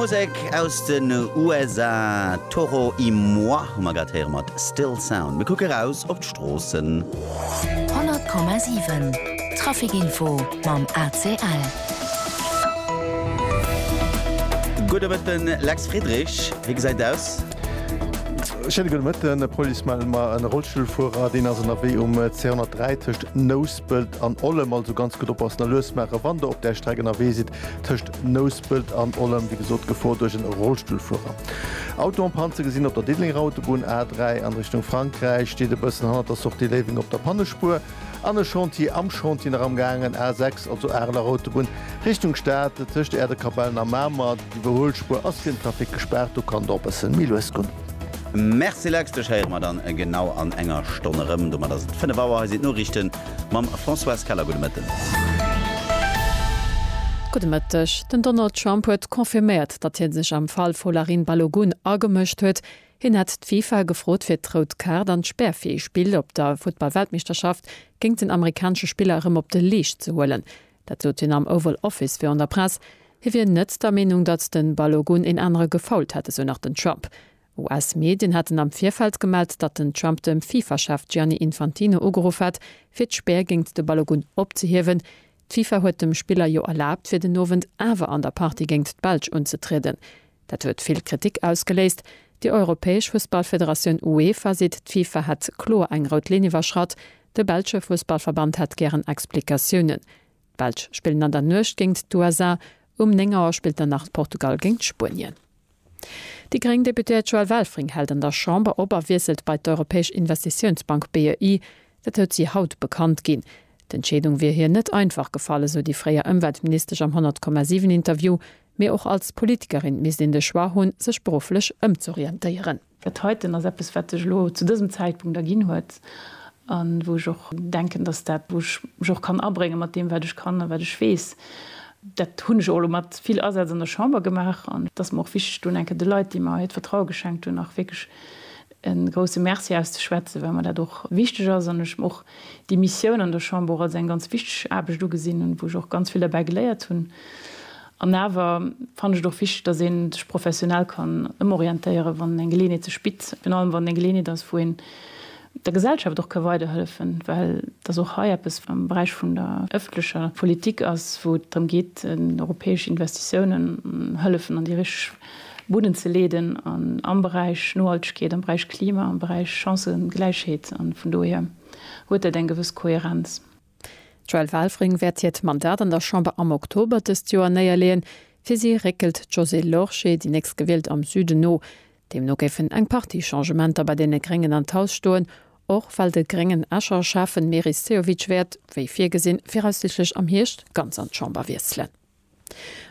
Musek aus den USA, Toro y moi hu mer grad héiere mat Still Sound. Mir kucke raus op d'Stroossen. 100,7 Trafic Info mam ACL. Gudde Mëtten, Lex Friedrich, wéi gesäit aus? Schéine gudde Mëtten, Police mellt mer en Rollstullfuerer, deen ass ënnerwee um C103 tëscht Nous. Nospelt an Ollem, also ganz gutt oppassen a lues maachen, wann der op där Streck ënnerwee sidd tëscht Nouspelt an Ollem. Wéi gesot, Gefor duerch e Rollstullfuerer. Auto en panne ze gesinn op der Diddelenger Autobunn A3 an Richtung Frankräich. Steet e bëssen hannert der Sortie Léiweng op der Pannespuer an e Chantier am Chantier nach amgaangen. A6, also Areler Autobunn Richtung Stad tëscht Äerdekapellen a Mamer. D'Iwwerhuelspuer ass fir den Trafic gespaart, do kann der op bëssen méi lues gonn. Merci Lex, dech héiere mer dann genau an enger Stonn erëm. Domat ass et 5 Auer, hei sinn d'Noriichten mam Françoise Keller. Gudde Mëtten. Gudde Mëtteg. Den Donald Trump huet confirméiert, datt hie sech am Fall Folarin Balogun agemëscht huet. Hien hätt d'FIFA gefrot fir d'Rout Kaart an d'Spärfee-Spill op der Futtball-Weltmeeschterschaft géint den amerikanesche Spiller erëm op de Leescht ze huelen. Dat sot hien am Oval Office virun der Press. Hie wier net der Meenung, datt de Balogun een anere gefoult hätt, esou nach den Trump. US-Medien haten am Virfeld gemellt, datt den Trump dem FIFA-Chef Gianni Infantino ugeruff hätt, fir d'Spär géint de Balogun opzehiewen. D'FIFA huet dem Spiller jo erlaabt, fir den Owend awer an der Partie géint d'Belsch unzetrieden. Dat huet vill Kritik ausgeléist. Déi europäesch Fussballfederatioun UEFA seet, d'FIFA hätt kloer eng rout Linn iwwerschratt. De belsche Fussballverband hätt gären Explikatiounen. D'Belsch spillen an der Nuecht géingt d'USA. Um 9 Auer spillt dann nach Portugal géingt Spuenien. Déi gréng Deputéiert Joëlle Welfring hält an der Chamber op a wiesselt bei d'Europäesch Investitiounsbank, BEI. Dat huet si haut bekannt ginn. D'Entscheedung wier hir net einfach gefall, esou déi fréier Ëmweltministesch am 100,7 Interview. Mee och als Politikerin misst een de Choix hunn, sech berufflech ëmzorientéieren. Dat heiten ass eppes, wat sech elo zu dësem Zäitpunkt erginn huet a wou ech och denken, dass dat, wou ech mech och kann abréngen, mat deem, wat ech kann a wat ech weess, dat hunn ech och elo mat vill Asaz an der Chamber gemaach, an et ass mer och wichteg, do eng Kéier de Leit, déi mer hiert Vertraue geschenkt hunn, nach wierklech e grousse Merci auszeschwätzen, well mer dat och wichteg ass an ech och déi Missioun an der Chamber als eng ganz wichteg Aarbecht ugesinn hunn, wou ech och ganz vill derbäi geléiert hunn. An awer fannen ech et och wichteg, dass ee sech professionell kann ëmorientéieren, wann eng Geleeënheet sech bitt, virun allem wann et eng Geleeënheet ass, wou een der Gesellschaft och ka weiderhëllefen, well et ass och hei eppes am Beräich vun der ëffentlecher Politik ass, wou et drëm geet, europäesch Investitiounen, Hëllefen an déi richteg. Buden ze leeden an am Beräich Nohaltegkeet, am Beräich Klima, am Beräich Chancëgläichheet an vun dohier huet dat eng gewëss Kohärenz. D'Joëlle Welfring wäert hiert Mandat an der Chamber am Oktober dëst Joer néierleeën. Fir si réckelt d'Josée Lorsché, déi Nächstgewielt, am Süden no. Deemno géifen eng Partie Changementer bei deene Gréngen an d'Haus stoen, och well de gréngen Escher Schäffen Meris Sehovic wäert, wéi virgesinn, viraussiichtlech am Hierscht ganz an d'Chamber wiesselen.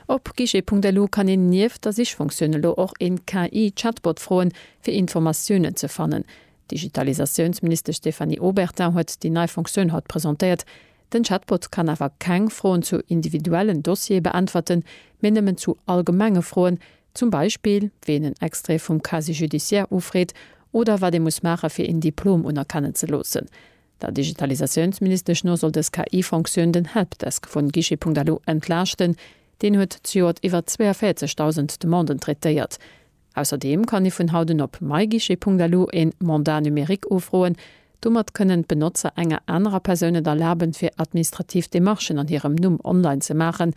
Op guichet.lu kann een nieft der Sichfunktioun elo och een KI-Chatbot froen, fir Informatiounen ze fannen. D'Digitalisatiounsministesch Stéphanie Obertin huet déi nei Funktioun haut presentéiert. Den Chatbot kann awer keng Froen zu individuellen Dossiere beäntwerten, mee nëmmen zu allgemenge Froen, zum Beispill wéi een en Extrait vum Casier judiciaire ufreet oder wat ee muss maache fir een Diplom unerkennen ze loossen. Der Digitalisatiounsministesch no soll dës KI-Fonctioun den Helpdesk vun Guichet.lu entlaaschten. Deen huet zejoert iwwer 42.000 Demanden traitéiert. Ausserdeem kann ee vun haut un op myguichet.lu een Mandat numérique ufroen. Domat kënnen d'Benotzer enger anerer Persoun et erlaben, fir administrativ Demarchen an hirem Numm online ze maachen.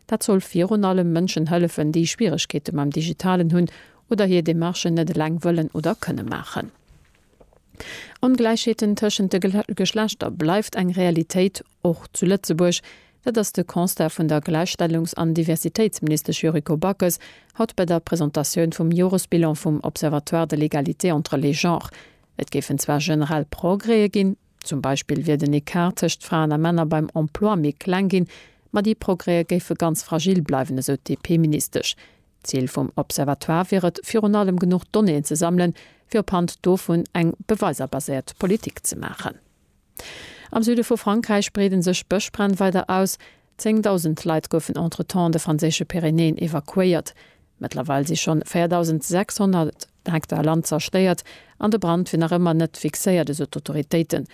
Dat soll virun allem Mënschen hëllefen, déi Schwieregkeete mam Digitalen hunn oder hir Demarchen net eleng wëllen oder kënne maachen. Ongläichheeten tëschent de Geschlechter bleift eng Realitéit, och zu Lëtzebuerg. Dat ass de Constat vun der Gläichstellungs an Diversitéitsministesch Yuriko Backes haut bei der Presentatioun vum Joresbilan vum Observatoire de l'égalité entre les genres. Et géifen zwar generell Progrèe ginn, zum Beispill wier den Ecart tëscht Fraen a Männer beim Emploi méi kleng ginn, ma déi Progrèe géife ganz fragil bleiwen, esou d'DP-Ministesch. D'Zil vum Observatoire wier et, virun allem genuch Donnéeën ze sammelen, fir op Hand dovun eng beweiserbaséiert Politik ze maachen. Am Süde vu Frankräich breeden sech d'Bëschbränn weider aus. Zéngdausend Leit goufen entretemps an de franséische Pyrenäen evakuéiert. Mëttlerweil si schonn 4.600 Hektar Land zerstéiert an de Brand wier nach ëmmer net fixéiert, esou d'Autoritéiten.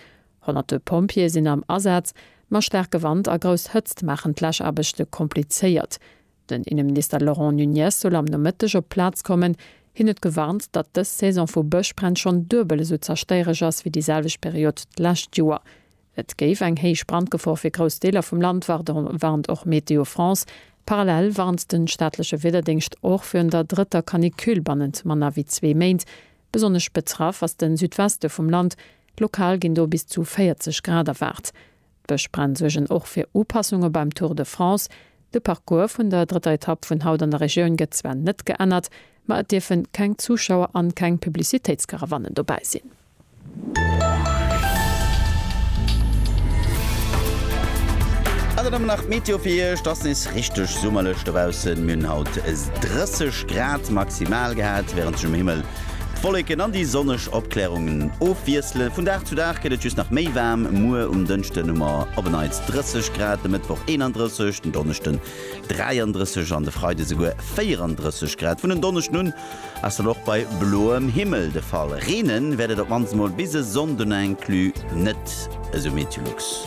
Honnerte Pompjeeë sinn am Asaz, ma staarke Wand a grouss Hëtzt maachen d'Läschaarbechte komplizéiert. Den Inneminister Laurent Nunez soll am Nomëtteg op d'Plaz kommen. Hien huet gewarnt, datt dës Saison vu Bëschbränn schonn duebel esou zerstéiereg ass wéi déi selwecht Period d'lescht Joer. Et géif eng héich Brandgefor fir grouss Deeler vum Land waarden, warnt och Météo France. Parallel warnt de staatleche Wiederdéngscht och virun der drëtter Canicule bannent manner wéi zwee Méint. Besonnesch betraff ass de Südweste vum Land, lokal ginn do bis zu 40 Grad erwaart. D'Bëschbränn suergen och fir Upassunge beim Tour de France. De Parcours vun der drëtter Etapp vun haut an der Regioun gëtt zwar net geännert, ma et dierfe keng Zuschauer an keng Publicitéitskarawannen dobäi sinn. An dann nach d'Meteo fir Iech, Et ass nees richteg summerlech dobaussen. Mir hunn haut 30 Grad maximal gehat, wärend sech um Himmel D'Wolleken an déi sonneg Opklärungen ofwiesselen. Vun Dag zu Dag gëtt et just nach méi waarm. Muer um Dënschden hu mer op en Neits 30 Grad, de Mëttwoch 31, den Donneschden 33 an de Freide souguer 34 Grad. Vun en Donneschden un ass dat och bei bloem Himmel de Fall. Reenen wäert et op mannst mol bis e Sonnden inclus net esou. Meteolux.